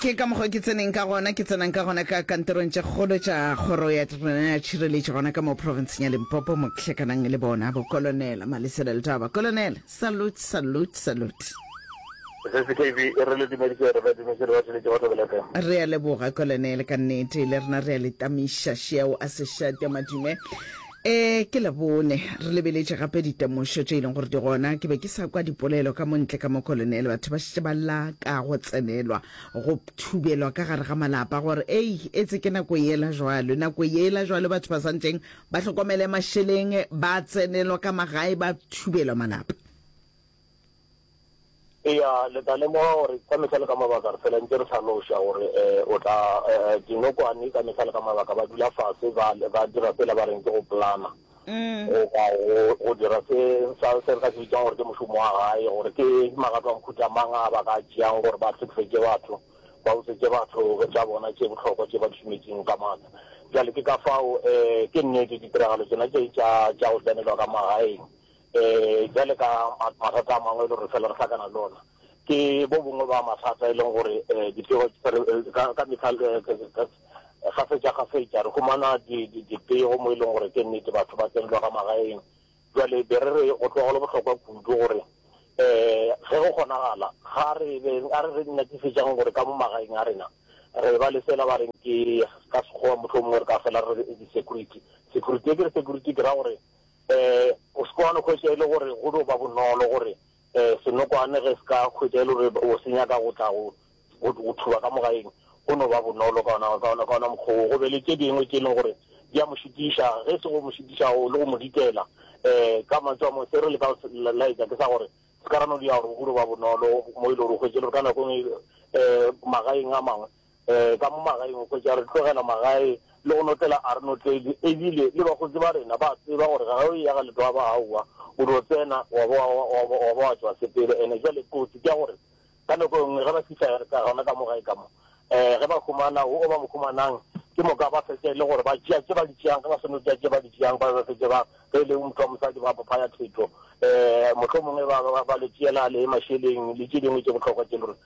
ke ka mokgwa ke tseneng ka gona ke tsenang ka gona ka kantorong tša kgolo tša kgoro ya rena ya tšhireletšo gona ka mo provinceng ya limpopo mo ke hlakanang le bona bokolonela malesela letaba kolonela salute salute salute SSKB e re le dumeditse re badimo se re ba tšweletše batho belepeng. re a leboga kolonele ka nnete le rena re a le tamiša šeo a sešate madume E, ke Labone. Re lebeletše gape ditemošo tše e leng gore di gona. Ke be ke sa kwa dipolelo ka mo ntle ka mo Kolonele. Batho ba šetše ba lla ka go tsenelwa, go thubelwa ka gare ga malapa gore, Ei, etse ke nako yela jwalo, nako yela jwalo batho ba swanetšeng ba hlokomele mašeleng, ba tsenelwa ka magae, ba thubelwa malapa. Eya, le tla lemoga gore ka mehla le ka mabaka re phela ntše re hlaloša gore o tla. Dinokwane ka mehla le ka mabaka ba dula fase ba ba dira sela ba reng ke go plana goba go dira se sa se re ka se bitsang gore ke mošomo wa gae gore ke magato a mohuta mang a ba ka tšeang gore ba hlekefetše batho ba utswetše batho tša bona tše bohlokwa tše ba di šometšeng ka maatla. Bjale ke ka fao ke nnete ditiragalo tšona tše tša tša go tsenelwa ka magaeng Bjale ka mathata a mangwe e le gore re fela re hlakana le ona, ke bo bongwe ba mathata e leng gore dipego ka mehla kgafetšakgafetša re humana dipego mo e leng gore ke nnete batho ba tsenelwa ka magaeng. Bjale be re re go tloga go le bohlokwa kudu gore ge go kgonagala ga re be a re re nyakišetšang gore ka mo magaeng a rena re ba le sela ba reng ke ka Sekgowa mohlomongwe re ka fela re re security. Security e ke re security ke ra gore Um o se ke wa no hwetša e le gore go no ba bonolo gore um senokwane ge se ka hwetša e le gore o se nyaka go tla go go thuba ka mo gaeng, go no ba bonolo ka ona ka ona ka ona mokgwa wo. Go be le tše dingwe tše e leng gore di a mo šitiša, ge se go mo šitiša o le go mo ditela. Um ka mantšu a mangwe se re leka go se laetša ke sa gore se ka ra no dira gore go no ba bonolo mo e le gore o hwetše e le gore ka nako e nngwe um magaeng a mangwe um ka mo magaeng, o hwetša re tlogela magae le go notlela a re notledi, e bile le bakgotsi ba rena ba a tseba gore ga o eya ga Letwaba, aowa, o dio tsena wa ba wa ba wa ba wa tšwa sepele. Ene bjale kotsi ke ya gore ka nako e nngwe ge ba fihla ka gona ka mo gae ka mo, um ge ba humana wo o ba mo humanang, ke moka ba fetša e le gore ba tšea tše ba di tšeang, ge ba seno tšea tše ba di tšeang ba ba fetše ba, ge e le motho wa mosadi ba ba phaya thetho, um mohlomongwe ba ba ba le tšeela le mašeleng le tše dingwe tše bohlokwa tše e le gore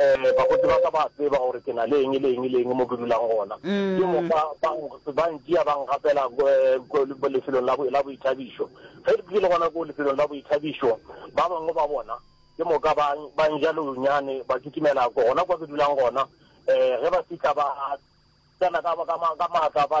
Ee, bakgotsi ba ka ba a tseba gore ke na le eng le eng le eng mo ke dulang gona. Ke moka ba ba ntšea ba nkgapela ko lefelong la la boithabišo. Ge ke le gona ko lefelong la boithabišo, ba bangwe ba bona ke moka ba ba nja leonyane ba kitimela gona kwa ke dulang gona. Ge ba fitlha ba tsena ka ka ka maatla ba.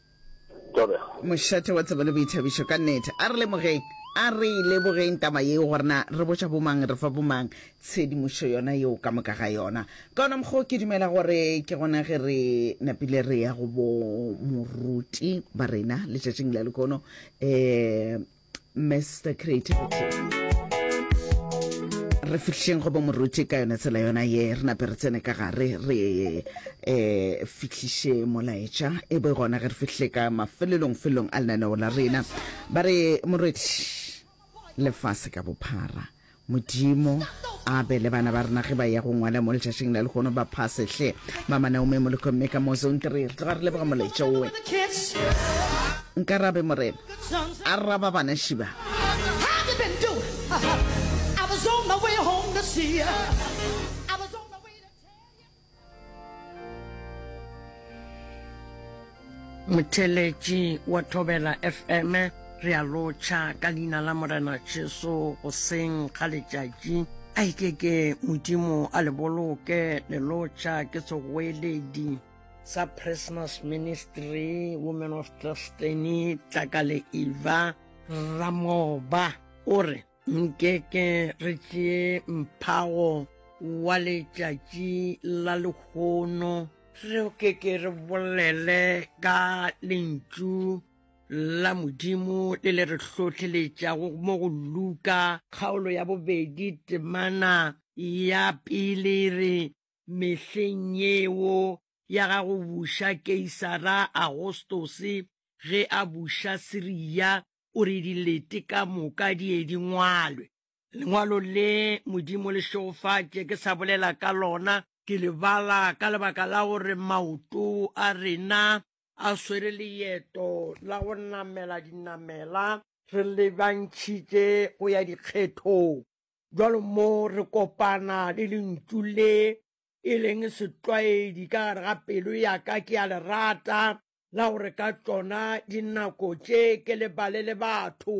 Thobela. Mošate wa tsebo le boithabišo, ka nnete. A re lemogeng, a re e lebogeng taba yeo gore na re botša bomang, re fa bomang tshedimošo yona yeo ka moka ga yona. Ka ona mokgwa o ke dumela gore ke gona ge re napile re ya go bo moruti ba rena letšatšing la lekono, um Mr. Creativity re fihleng go bomoruti ka yone tsela yona ye re nape re tsene ka gare re um fihliše molaetša e bo gona ge re fihle ka mafelelong felong a lenaneo la rena ba re morwedi lefase ka bophara Modimo a be le bana ba rena ge ba ya go ngwala mo letšatšing la lehono ba phase hle mama naome moleko mme ka mo zone three re tloga re leboga moletša owe nka rabe morena a raba bana šiba motheletši wa thobela fm re a lotšha ka leina la morena jesu goseng ga letšatši a ike ke modimo a le boloke le lotšha ke tsogoeledi sa presmas ministry women of destiny tlakale eva ramoba o re nkeke re tšee mphago wa letšatši la lekgono re o keke re bolele ka lentšu la modimo le le re hlohleletšago mo go luka kgaolo ya bobedi temana ya pele re mehleng yeo ya ga go buša keisara agostose ge a buša siria o re dilete ka moka di ye di ngwalwe. Lengwalo le Modimo le šegofatše ke sa bolela ka lona, ke le bala ka lebaka la gore maoto a rena a swere leeto la go namela dinamela re lebantšhitše go ya dikgethong. Bjalo mo re kopana le lentšu le e leng setlwaedi ka gare ga pelo ya ka, ke a le rata, la gore ka tšona dinako tše ke lebale le batho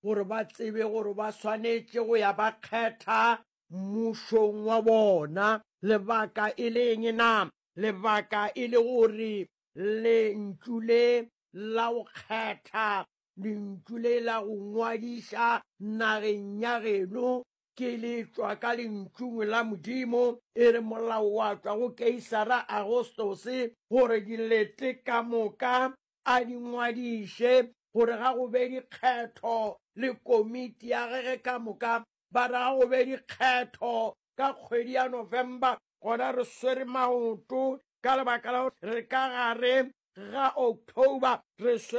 gore ba tsebe gore ba swanetše go ya ba kgetha mmušong wa bona. Lebaka e le eng na? Lebaka e le gore lentšu le la go kgetha, lentšu le la go ngwadiša nageng ya geno Ke le tšwa ka lentšung la Modimo, e re molao wa tšwa go Keisara Agostose, gore dilete ka moka a di ngwadiše, gore ga go be dikgetho, le komiti ya gege ka moka, ba re ga go be dikgetho ka kgwedi ya November. Gona re swere maoto ka lebaka la gore re ka gare ga October, re swere.